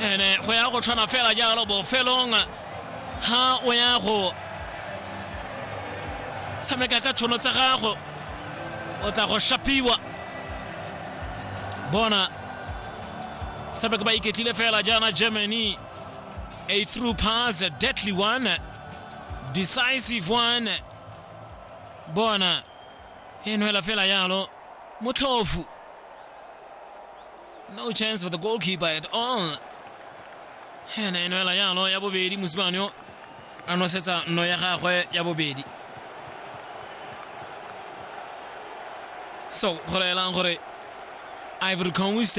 ene go ya go tshwana fela jalo bofelong ha o ya go tshameka ka tshono tsa gago o tla go shapiwa bona tshameka ba iketlile fela jaana germany a through pass a deadly one decisive one bona e nwela fela yalo motlhofu no chance for the goalkeeper at all ene eno ela yalo ya bobedi mosimane yo a nosetsa nno ya gagwe ya bobedi so go laelang gore ivory coast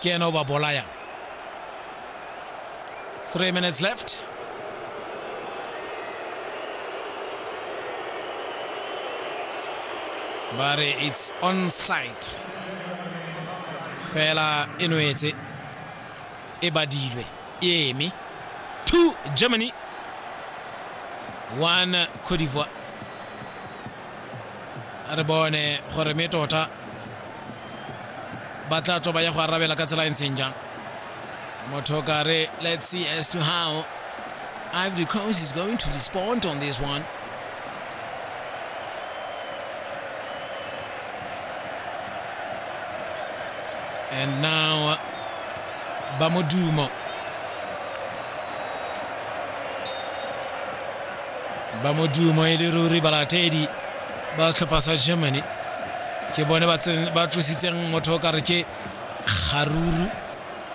ke ena o ba bolayang three minutes left ba re it's on site fela e nwetse e badilwe e eme two germany one cote d'ivoire re bone gore me tota ba tla tswa ba ya go arabela ka tsela e ntseng jang motho ka re let's see as to how ivory coast is going to respond on this one and now ba modumo ba modumo e le ruri balatedi ba setlhopha sa germany ke bone ba tlositseng motho o kare ke kgaruru